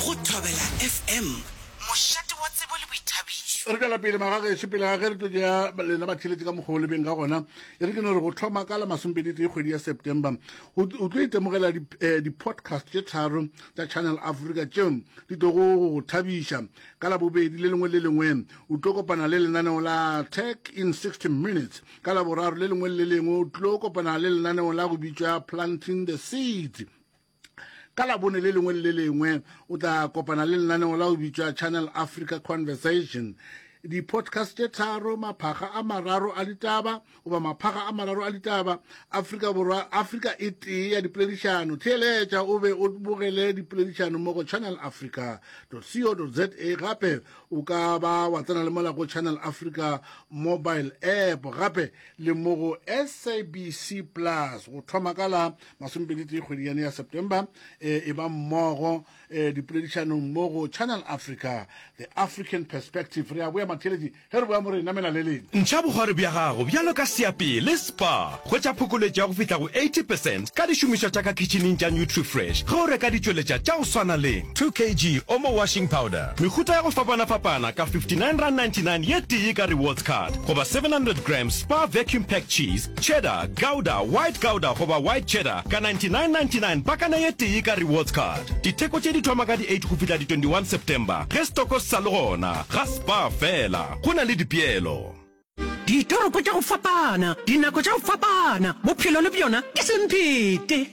Go Thobela FM, mošate wa tsebo le boithabišo. Re tšwela pele magagešo pele ga ge re tlo tšea lena batheletši ka mokgwa o lebeng ka gona e re ke no re go tlhoma ka la masompeditee kgwedi ya september o tlo itemogela eh, di-podcast tše tharo tša channel africa tšeo di tlogo go go thabiša ka labobedi le lengwe le lengwe o tlo kopana le lenaneo la tech in 60 minutes ka laboraro le lengwe le lengwe o tlo kopana le lenaneo la go bitšwa planting the seeds ka labone le lengwe le le lengwe o tla kopana le lenaneo la go bitšwa channel africa conversation di-podcast tše tharo maphaga a mararo a ditaba goba maphaga a mararo a ditaba afrika borwa afrika e tee ya dipoledišano theeletša o be o bogele dipoledišano mo go channel africa co za gape o ka ba wa tsena le mola go channel africa mobile app gape le mo go sabc plus go thoma ka la masomepedi tee kgwedi yane ya september e, e ba mmogo e, dipoledišanong mo go channel africa the african perspective re a boya matheletši ge re boya mo re namela le leng Ntšha bogwari bja gago bjalo ka seapee le spa. Hwetša phokoletšo ya go fihla go 80 percent ka dišomišwa tša ka khitšhineng tša Nutrifresh ge o reka ditšweletša tša go swana le 2 kg Omo washing powder, mehuta ya go fapana-fapana ka R59.99 ye tee ka rewards card goba 700 grams Spar vacuum packed cheese Cheddar, Gouda, White Gouda goba White Cheddar ka 99.99 pakana ye tee ka Rewards Card. Ditheko tše di thoma ka di 8 go fihla di 21 September ge setoko se sa le gona. Ga Spar fela, go na le dipeelo. Ditoropo tša go fapana, dinako tša go fapana, bophelo le bjona ke semphete.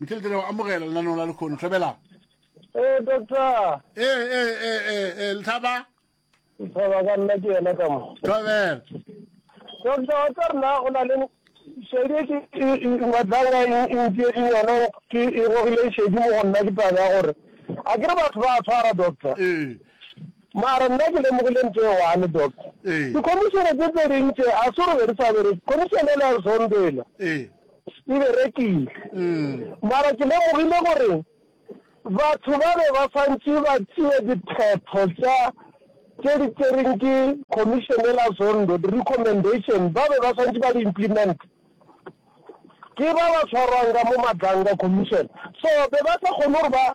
Michael Tere, amogela lenaneo la lekgono. Tlhabelang. Eh, doctor. Eh, eh, eh, eh, eh, Lethaba. Lethaba ka nna ke yena ka mo. Tlhabela. Doctor, wa tsa rena go na le šedi e ke matlanga e ntse e yona ke e gogile šedi mo go nna ke taba ya gore a ke re batho ba tshwara doctor. Eh. mara nna ke lemogile ntho e one doctor ee. dikhomišene tse tse dintse a se re be re sa bere khomišene le a zombela ee. Di be rekile. Mara ke lemogile gore batho ba be ba swantše ba tšee diphetho tša tše di tšereng ke Commission e la Zondo, di-recommendation, ba be ba swantše ba di implementa. Ke ba ba tshwarwang ka mo Madlanga Commission. So be ba sa kgone gore ba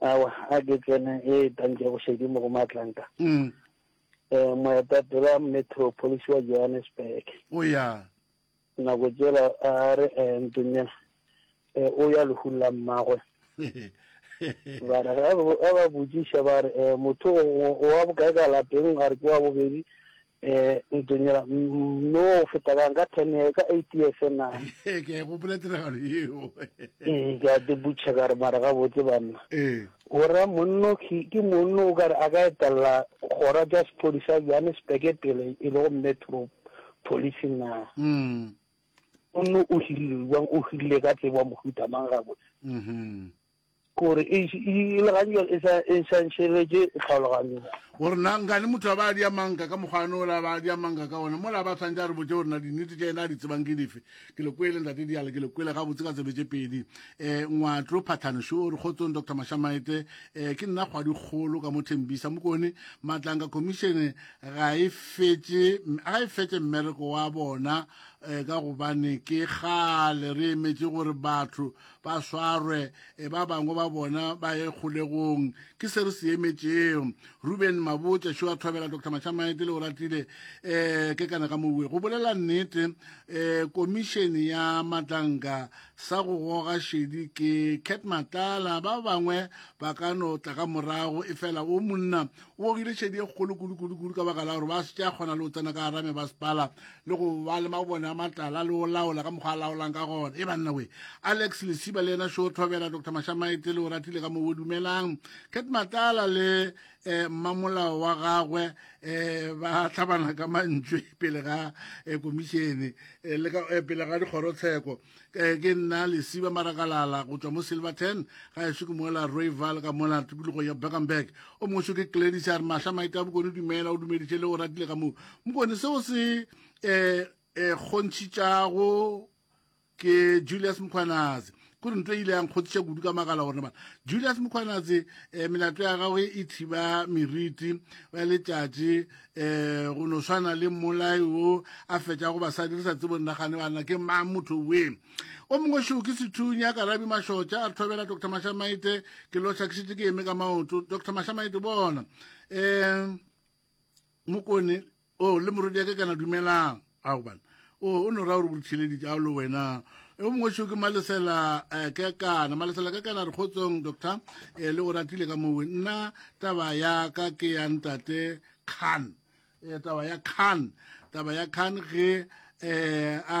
Awa, a ke tsene e etang tša bošedimo go Matlanka, um moetapele wa metropolisi wa Johannesburg. O ya. Nako tšela a re, um Ntonyana, um o ya lehung la mmagwe. ba re ga ba botšiša ba re, um motho o wa bokae ka lapeng? A re ke wa bobedi. Ee, Ntunyela, mme o feta bang ka ten years, ka eight years na? Ee, ke a e gopola tiragalo yeo. Ee, ke a tebutšha ka re mara gabotse banna. Ee. O ra monno ke ke monno o ka re a ka etelela kgora tša sephodisa Johannesburg pele e lego Metro Police na? Mm. Monno o hirile bjang, o hirile ka tsebo mohuta mang gabotse? Mhm. Go re e le gantši e sa e sa ntšhegetše tlhaologanyong. Go re na nka le motho a ba a dia manka ka mokgwa no la ba a dia manka ka ona mo la ba tshwantse a re botse gore na di nnete tša ena a di tsebang ke dife ke le kwele ntate diale ke le kwele ga botse ka tsebe tše pedi eh ngwatlo phathano sho re kgotsong dr mashamaete eh ke nna kgwa dikgolo ka mo thembisa mokone matlanga commission ga e fetse ga e fetse mmereko wa bona eh ka gobane ke gale re emetše gore batho ba swarwe e ba bangwe ba bona ba ye kgolegong ke se re se emetšego ruben mabotša šo a thobela dr mashamaete le oratile um eh, ke kana ka moue go bolela nnete um eh, komišene ya matlanka sa go goga šedi ke cat matala ba bangwe ba ka no tla ka morago e fela o monna o gogile šedi e kgolo kudu-kudu-kudu ka baka la gore ba se tša kgona le go tsena ka garame ba sepala le go ba le mabone a matala le o laola ka mokgwa a laolang ka gona e banna we alex lesiba le yena show thobela dr mashamaete le o ratile ka moo o dumelang cat matala le um mmamolao wa gagwe um ba tlhabana ka mantšwe pele ga um komišene um pele ga dikgorotsheko ke ke nna lesiba marakalala go tšwa mo silverton ga eso ke mola royval ka mola tikologo ya beckenberg o mongweso ke gladys a re mahla maita bokone dumela o dumeditše le o ratile ka moo mokone seo se um um kgontšhitšago ke julius mokgwanatse kore nto e ile yang kgothiša kudu ka makala gore bana julius mokgwanatse um melato ya gagwe e thiba meriti ya letšatši um go no swana le mmolai o a fetša go basadi re sa tsebo nnagane banna ke mang motho we o mongwe šoo ke sethunya ka rabi mašotša a re thobela doctor mašamaite ke loša ke šetse ke eme ka maoto doctor mašamaite bona um mokone o oh, le morodi yake kana dumelang a gobane o no ra gore o ditheleditse a lo wena o mongwe seo ke malesela eh, ka kana malesela ka kana re kgotsong doctor eh, le go ratile ka mowe nna taba ya ka ke ya ntate khan eh, taba ya khan taba ya khan ge um a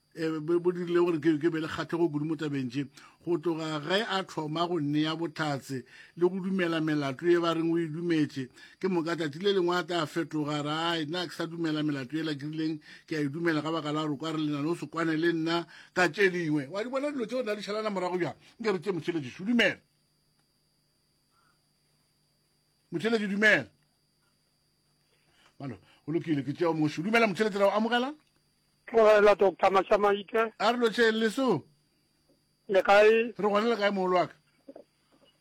e, bo dirile gore ke be le kgatlhego kudu mo tabeng tše go tloga ge a thoma go nea bohlatse le go dumela melato e ba reng o e dumetše ke moka tšatši le lengwe a tla fetoga rae nna ke sa dumela melato e la ke rileng ke a e dumela ka baka la gore kwa re lena no se kwane le nna ka tše dingwe wa di bona dilo tse o na di šalana morago bjang nke re tše mošeletši o dumela mošeletši dumela balo o lokile ke tšeo moši o dumela mošeletši ra o amogela Tlogela Doctor Mashamaite. A re lotšeng leso. Le kae? Re gona le kae mogolo wa ka?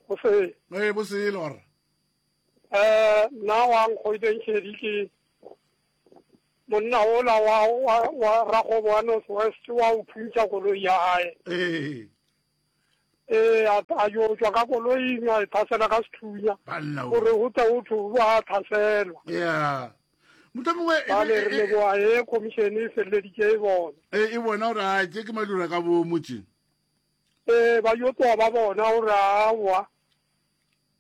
Go se. Ee bo se le gore. Eh na wa nkgoideng shedi ke monna o la wa wa wa ragobo wa North West wa o phuntsha koloi ya hae. Ee. Ee, a, a yo tšwa ka koloing a e thasela ka sethunya gore go tle go thwe ba thaselwa. Yeah. motlhomongwe e ba le re leboa e khomišene e feleleditše e bona e e bona gore a tše ke malura ka bo motse ee ba yo tloa ba bona gore awa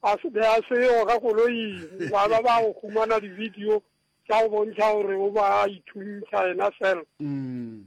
a se be a seo ka koloing ba ba ba go humana di-video tša go bontšha gore o ba ithuntšha ena fela mm.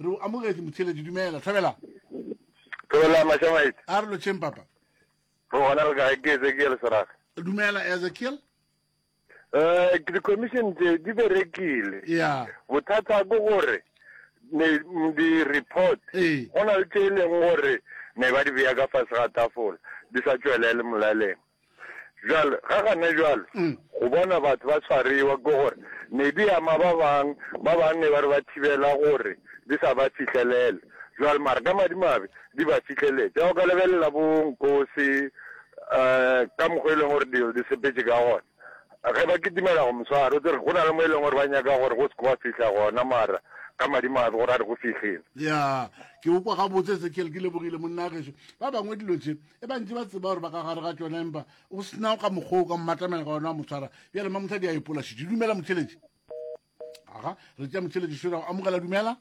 Re o amogetše motheeletši. Dumela. Thabelang. Thabelang Mashamaite. A re lotšheng papa. Re gona le kae ke Ezekiel Serage. Dumela Ezekiel. Eh ke di commission tse di berekile. Yeah. Bothata go gore ne di report. Eh. Gona le tse leng gore ne ba di beya ka fase ga tafola di sa tšwelele molaleng. Bjale, ga gane bjalo, go bona batho ba swarewa, ke gore ne di ama ba bang, ba bang ne ba re ba thibela gore di sa ba fihlelele. Bjale, mara ka madimabe di ba fihleletse. Ya o ka lebelela bo Nkosi, um ka mokgwa e leng gore dilo di sepetše ka gona, ge ba kitimela go moswara, o tsere go na le mo e leng gore ba nyaka gore go se ke wa fihla gona, mara ka madimabe gore a re go fihlile. Ya, ke go kwa gabotse, Ezekiel, ke lebogile monna wa gešo. Ba bangwe dilo tše, e ba ntse ba tseba gore ba ka gare ga tsone empa o sena ka mokgwa o ka mmatamela ka one wa motshwara bjale ma motlha di a epolasitše dumela motheletši aga re tša motheletši sera o amogela dumela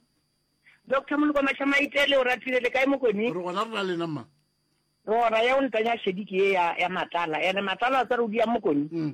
doctor molokomaša maitele o ratile le kae mokoni re gona re na lena mma rora ya o ntanya shediki ye ya matala ene matala a tsare o di ya mokoni mm.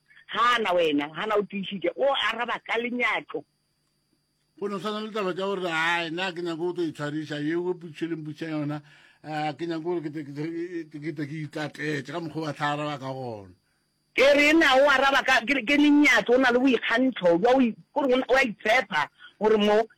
Hana wena, Hana o tiišitše, o araba ka lenyatšo. Go no swana le taba tša gore a na ke nyako go tlo itshwariša ye o putšheleng putša yona um ke nyako gore kete ke itlatletše ka mokgwa wa tla araba ka gona ke re na o araba ka ke lenyatso o na le boikgantlo jwa gore wa itshepa gore mo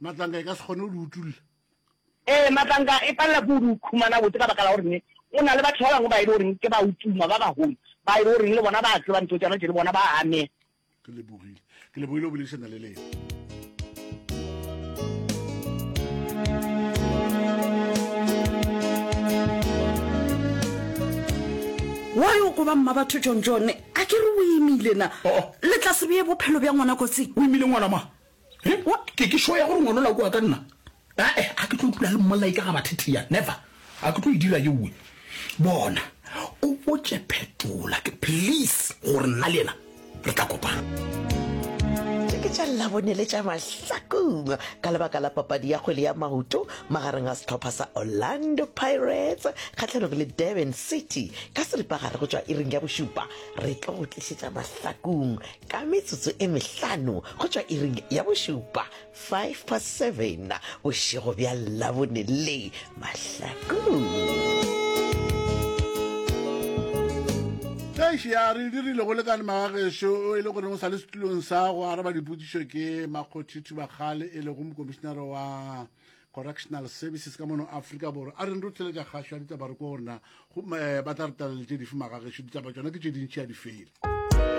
Matlanka e ka se kgone go di utulla. Ee, matlanka e palela ke go di khumana botse ka baka la gore go na le batho ba bangwe ba e le goreng ke ba utuma ba bagolo ba e le goreng le bona ba tseba ntho tsana tse le bona ba amega. Ke lebogile, ke lebogile go boledišana le lena. Why o koba mma batho John John? A ke re o imile na? Oh, oh. Le tla se beye bophelo bja ngwana kotsing. O imile ngwana ma? He, wa, ke, ke sure ya gore ngwana la kua ka nna. Ae, a ke tlo dula le mmolai ka ga bathetia, never. A ke tlo e dira ye uwe. Bona, o botše Phetola, ke, please, gore nna le yena re tla kopana. Tše ke tša Labone le tša Mahlakong ka lebaka la papadi ya kgwele ya maoto magareng ga sehlopha sa Orlando Pirates kgahlanong le Durban City ka seripagare go tšwa iring ya bošupa. Re tlo go tlišetša Mahlakong Ka metsotso e mehlano go tšwa iring ya bošupa, 5 past 7, bošego bja Labone le mahlakong. Eish ya re dirile go lekane magagešo o e le gore o sa le setulong sa go araba dipotšišo ke makgothi thubakgale e lego mokomišenare wa correctional services ka mono aforika borwa a reng re tšweletša kgašo ya ditaba re ko gore na eh, ba tla re talela tše dife magagešo ditaba tšona ke tše dintšhi ya di fele